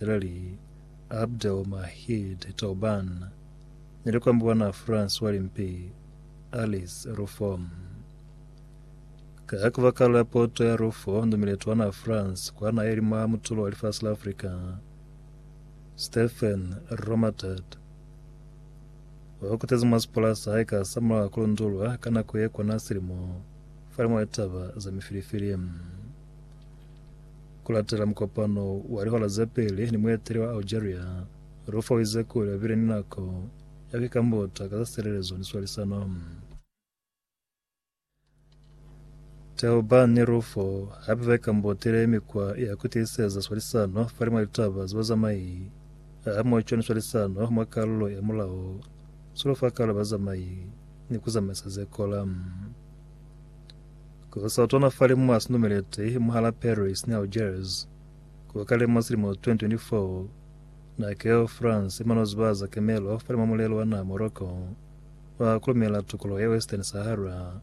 Israeli Abdelmahid Tobaan ni lukambo lwa naa Francois Limpi Alice Rufo. Ka kabakala la poto ya Rufo ni muleto wa naa France kwa naa ye li mwa mutulo wa lifasi la Afrika, Stephen Romatet o kutezi mwa sipola sa hae ka sa mulaho ku lundulwa ka nako ye kona silimo fa liñwe litaba za mifilifili. Ku latela mukopano wa lihora ze peli ni mueteli wa Algeria, Rufo uize kuli babile ni nako ya ku ikambuta ka za silelezo ni swalisano. Thelbah ni Rufo hape ba ikambutile mikwa ya ku tiiseza swalisano fa limwa litaba za bazamai hamoco ni swalisano mwa kalulo ya mulao, sulu fa kalulo ya bazamai ni ku zamaisa ze kola. Ku sa twana fale mwa si numeleti mwahala Paris ni Algiers, ku kale mwa silimo 2024, na keo France i mano ziba za kemelo fale mwa mulelo wa naha Morocco wa ku lumela tukoloho ya Western Sahara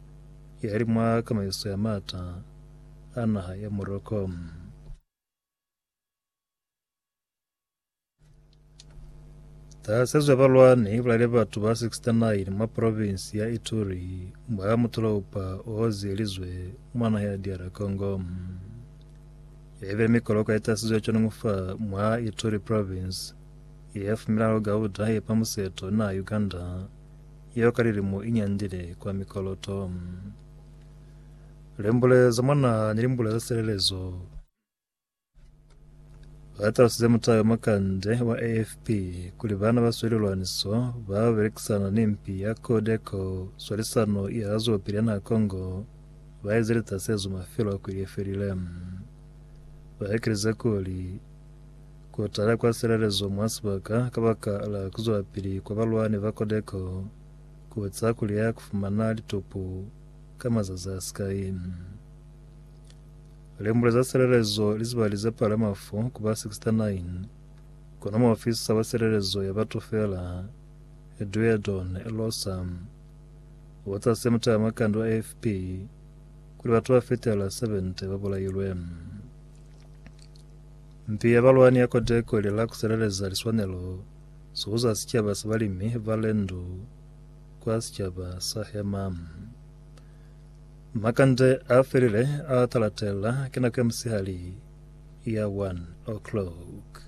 ya li mwa kamaiso ya maata a naha ya Morocco. Tahasezo ya balwani ibulaile batu ba 69 mwa provinsi ya Ituri mwa mutolopa ohozelizwe mwa naha ya DR Congo. Yaibile mikoloko yaitasizwe conungufa mwa Ituri province yefumilaho gauda yepa museto na Uganda yeo ka lilimo inyandile kwa mikoloto. Limbule za mwa naha ni limbule za silelezo Ba talusize mutayo mwa kande wa AFP kuli bana ba sweli lwaniso ba belekisana ni mpi ya Codeco swalisano ya zwelopili ya naha Congo ba eze litasezo mafelo a kweli ye felile. Ba ekelize kuli ku tala kwa silelezo mwa sibaka ka baka la ku zwelapili kwa balwani ba Codeco ku eza kuli ya ku fumana litupu ka mazazi a sikai. Limbule za silelezo li zibali ze palama fo ku ba 69, kono muofisa wa silelezo ya batu fela, Duedon Losa, u za se mutalamakande wa AFP kuli batu ba fetela 70 ba bulailwe. Mpi ya balwani ya Codeco ili la ku sileleza liswanelo zo za sicaba sa balimi ba Lendu kwa sicaba sa Hema. Makande a felile a talatela, ke nako ya musihali ya 1:00.